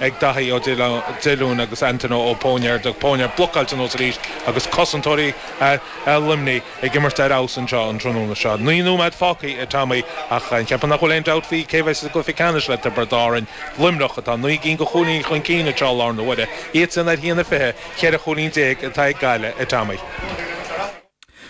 ag Daithí Ó Diolúin agus Antaine Ó Poniard, Poniard blocáilte anuas arís agus cosantóirí Luimnigh ag imirt ar fheabhas anseo an tráthnóna seo. Naoi nóiméad fágtha a Tommy ach ceapaim nach bhfuil aon dabht faoi cé bheidh sa gcluiche ceannais le Tiobraid Árainn, Luimneach atá naoi gcinn de chúilíní chun cinn anseo i láthair na huaire, iadsan ar haon a fiche, cheithre chúilín déag atá ag Gaillimh a Tommy.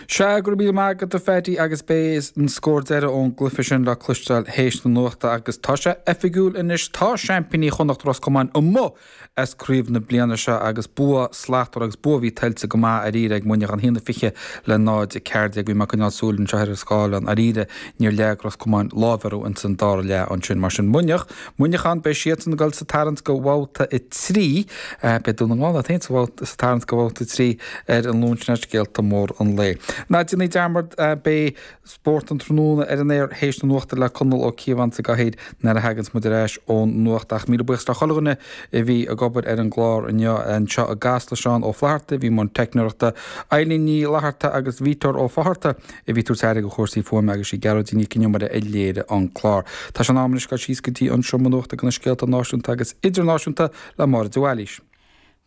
Seadh, go raibh míle maith agat a Pháidí agus beidh an scór deireadh ón gcluife sin le cloisteáil théis na nuachta agus tá sé oifigiúil anois, tá seaimpíní Chonnacht Ros Comáin amuigh as craobh na bliana seo agus bua slachtmhar agus bua a bhí tuillte go maith dháiríre ag Muineachán haon a fiche le náid a ceathair déag. Bhí mé ag coinneáil súil anseo ar an scáileán dháiríre, níor leag Ros Comáin láimh orthu ins an dara leath ansin mar sin Muineach, Muineachán, beidh siadsan ag dul sa tarraingt go bhabhta a trí. Beidh Dún na nGall iad féin sa tarraingt go bhabhta a trí ar an Luan. Sin iad scéalta móra an lae. Ná déanaigí dearmad, beidh Spórt an Tráthnóna ar an aer théis na nuachta le Conall Ó Cíobháin sa gcathaoir nuair a thaganns muid ar ais ón nuacht. Ach míle buíochas le chuile dhuine a bhí ag obair ar an gclár inniu, anseo i gCasla, Seán Ó Flaithearta, a bhí i mbun teicneoireachta, Eileen Ní Fhlaithearta agus Victor Ó Fátharta, a bhí tabhairt aire go chúrsaí fuaime agus sí Gearóidín Nic an Iomaire a léirigh an clár. Tá sé in am anois dul síos go dtí an seomra nuachta go na scéalta náisiúnta agus idirnáisiúnta le Máire de Bhailís.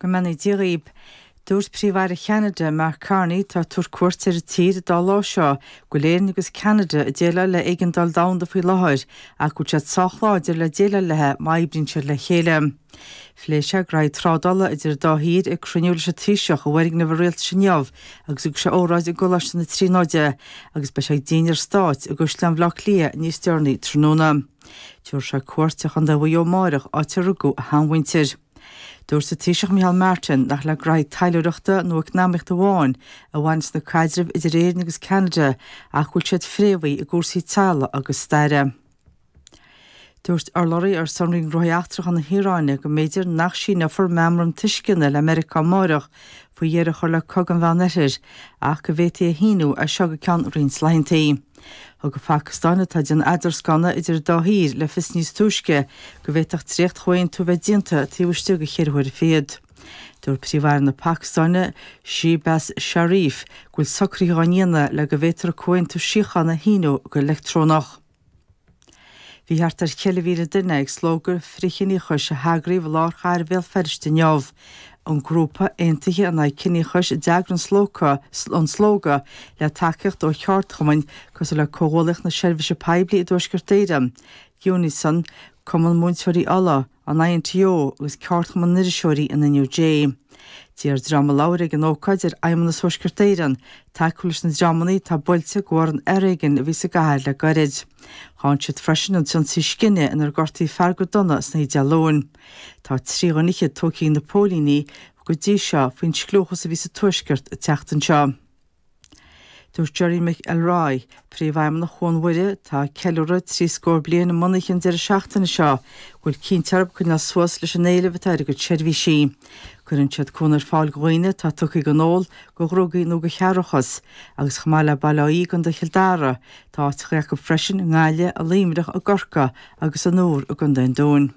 Go mbeannaí Dia dhaoib. Dúirt Príomh-Aire Cheanada, Mark Carney, atá ag tabhairt cuairt ar an tír an dá lá seo, go bhfuil Éirinn agus Ceanada ag déileáil le éigeandáil domhanda faoi láthair, ach go bhfuil siad sách láidir le déileáil leithe má oibríonn siad le chéile. Phléigh sé graithe trádála idir an dá thír ag cruinniú leis an Taoiseach i bhfoirgneamh an Rialtais inniu agus thug sé óráid i gColáiste na Tríonóide agus beidh sé ag dinnéar Stáit i gCaisleán Bhleá Cliath níos deireanaí tráthnóna. Tiúrfaidh sé cuairt ar Chondae Mhuigh Eo amáireach áit ar rugadh a sheanmhuintir. Dúirt an Taoiseach Micheál Martin nach le graithe taidhleoireachta nó eacnamaíochta amháin a bhaineas na caidrimh idir Éirinn agus Ceanada ach go bhfuil siad fréamhaithe i gcúrsaí teaghlaigh agus staire. Dúirt urlabhraí ar son Roinn Gnóthaí Eachtracha na hIaráine go mb'fhéidir nach síneofar meamram tuisceana le Meiriceá amáireach faoi dheireadh a chur le cogadh an Mheán Oirthir ach go bhféadfaí é a shíniú as seo go ceann roinnt laethanta. Thug an Phacastáin, atá ag déanamh eadarscánna idir an dá thír, le fios níos túisce go bhféadfadh dréacht-chomhaontú a bheith déanta taobh istigh de cheithre huaire fichead. Dúirt Príomh-Aire na Pacastáine, Shehbaz Sharif, go bhfuil socruithe á ndéanamh le go bhféadfar comhaontú síochána a shíniú go leictreonach. Bhí thart ar cheithre mhíle duine ag Slógadh Frithchiníochais a heagraíodh i lár chathair Bhéal Feirste inniu. An grúpa, Aontaithe in Aghaidh Ciníochais, a d'eagraigh an slógadh, le tacaíocht ó cheardchumainn cosúil le Comhghuallaíocht na Seirbhíse Poiblí i dTuaisceart Éireann, Unison, Cumann Múinteoirí Uladh, an INTO agus Ceardchumann na nIriseoirí an NUJ. D'iarr dream a labhair ag an ócáid ar Fheidhmeannas Thuaisceart Éireann tacú leis na dreamanna atá buailte de bharr an fhoréigin a bhí sa gcathair le gairid. Cháin siad freisin an t-ionsaí scine inar gortaíodh fear go dona san oíche Dé Luain. Tá trí dhuine fhichead tógtha ag na póilíní go dtí seo faoin scliúchas a bhí sa Tuaisceart an tseachtain seo. Dúirt Gerry Mc Elroy, Príomhfheidhmeannach Chuan Mhuire, atá ag ceiliúradh trí scór bliain a mbunaithe an deireadh seachtaine seo, go bhfuil cinnte orthub coinneáil suas leis an éileamh atá ar a gcuid seirbhísí. Cuireann siad cuan ar fáil dho dhaoine atá tugtha dhon ól, dho dhrugaí nó dho chearrbhachas, agus chomh maith le Baile Átha Í i gCondae Chill Dara, tá áiteacha acu freisin i nGaillimh, i Luimneach, i gCorcaigh agus an Iúr i gContae an Dúin.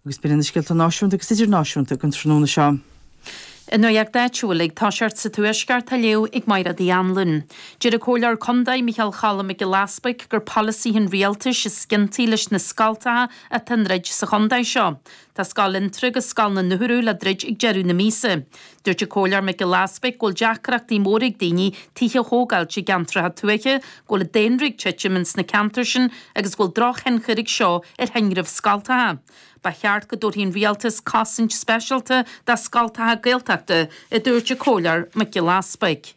Agus b'in iad na scéalta náisiúnta agus idirnáisiúnta againn tráthnóna seo. An nuaíocht áitiúil ag toiseacht sa Tuaisceart á léamh ag Maighread Uí Annluain. Deir an Comhairleoir Condae, Micheal Cholm Mac Giolla Easbuic gur polasaithe an Rialtais is ciontaí leis na scoltacha atá á ndroid sa chondae seo. Tá Scoil Fhionntrá agus Scoil an Urbhail le druid ag deireadh na míosa. Dúirt an Comhairleoir Mac Giolla Easbuic go bhfuil deacrachtaí móra ag daoine tithe a thógáilt i gceantracha tuaithe, go bhfuil an daonra ag titim ins na ceantair sin agus go bhfuil drochthionchar ag seo ar thinreamh scoltacha. Ba cheart go dtabharfadh an Rialtas cosaint speisialta do scoltacha Gaeltachta, a dúirt an Comhairleoir Mac Giolla Easbuic.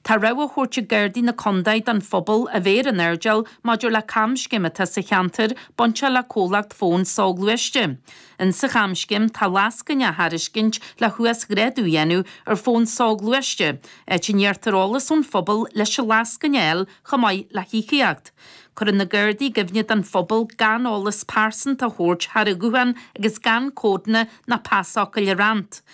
Tá rabhadh á thabhairt ag Gardaí na Condae don phobal a bheith ar an airdeall maidir le camscéim atá sa cheantar bainte le comhlacht fóin soghluaiste. In sa chamscéim tá lascaine á thairiscint le huasghrádú a dhéanamh ar fón soghluaiste, áit a n-iarrtar eolas ón phobal leis an lascaine a fháil chomh maith le híocaíocht. Cuireann na Gardaí i gcuimhne don phobal gan eolas pearsanta a thabhairt thar an ghuthán agus gan códanna ná pasfhocail a roinnt.